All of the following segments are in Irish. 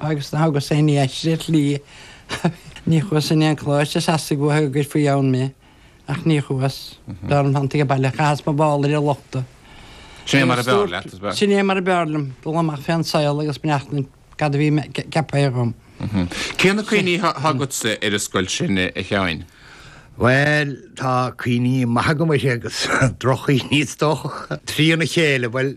agus ná thugas aon ní aisti ar shlí ní chuas in aon choláiste is dócha go gcuirfí ann mé, ach ní chuas. Dar ndóigh thánag abhaile, chaitheas mo mhála ar an lochta. Sin é mar a b'fhearr leat, is breá. Sin é mar a b'fhearr liom, dul amach fén saol agus féachaint cad a bhí ceaptha dhom. Cé na cuimhní atá agatsa ar an scoil sin, a Sheáin? Bhuel, tá cuimhní maithe agam uirthi agus droch-chuimhní is dócha, trína chéile. Bhuel.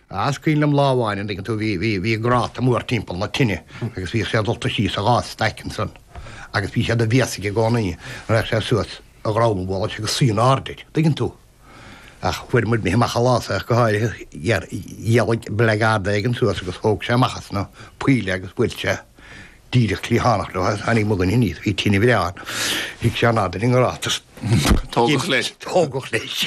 Ah is cuimhin liom lá amháin an dtuigeann tú bhí, bhí, bhí gráta mór timpeall na tine agus bhíodh sé dulta síos i dhá staic ansan agus bhí sé de bhéas aige i gcónaí nuair a théadh sé suas a dhroim an bhalla agus suí in airde air, tuigeann tú. Ach bhíomair imithe amach an lá seo go háirithe, dh'éir, dh'éirigh blackguard éigin suas agus thóg sé amach as na poill é agus bhuail sé Díreach trí thánacht nó tháinig mo dhuine aníos bhí tine bhreá ann. Shuigh sé in airde ar an ngráta is. Tógadh leis. Tógadh leis.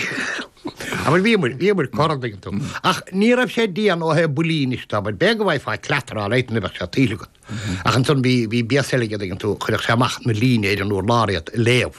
Abair bhíomair, bhíomair, cor a dtuigeann tú. Ach ní raibh sé dian ó thaobh buillí anois tá muid. B'fhéidir go bhfaighfeá cleatar á leigheas ní bheadh sé tuillte agat. Ach ansan bhí, bhí béas eile aige a dtuigeann tú, chuireadh sé amach ina líne ar an urlár iad ag léamh.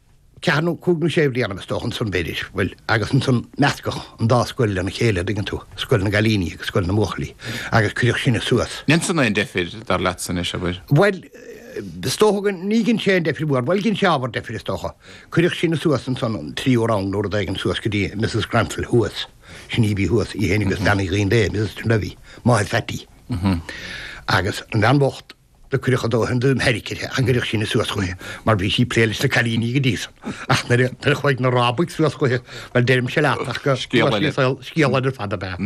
ceathair nó cúig nó sé bhliana is dócha ansan b'fhéidir, bhuel agus ansan meascadh an dá scoil lena chéile a' dtuigeann tú, scoil na gcailíní agus scoil na mbuachaillí agus cuireadh sinne suas. Ar dhein san aon deifir dar leatsa anois, a' bhfuil? Bhuel, is dócha go, níor dhein sé aon deifir mhór, bhuel dhein sé ábhar deifir is dócha. Cuireadh sinne suas ansan sa tríú rang nó rud éigin suas go dtí Misses Granville thuas, sin í a bhí thuas, í fhéin agus Bean Uí Dhuinnshléibhe, Misses Dunlevy, máthair Pheaití. Agus an bhean bhocht, Do cuireadh a dóthain de sheiric uirthi nuair a cuireadh sinne suas chuichi mar bhí sí ag plé leis na cailíní go dtí san. Ach nuair a chuaigh na rábaigh suas chuichi, bhuel, deirimse leat ach go, scéal eile scéal eile ar fad ab ea.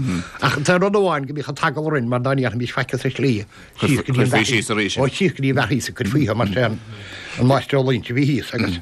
Ach tá rud amháin go mbíodh an t-eagal orainn mar dá ndéarfaimis faic sa slí, síos go dtí an bheathaigh, ó síos go dtí an bheathaigh is ea a cuirfí mar is é an máistir Ó Loingsigh a bhí thíos agus,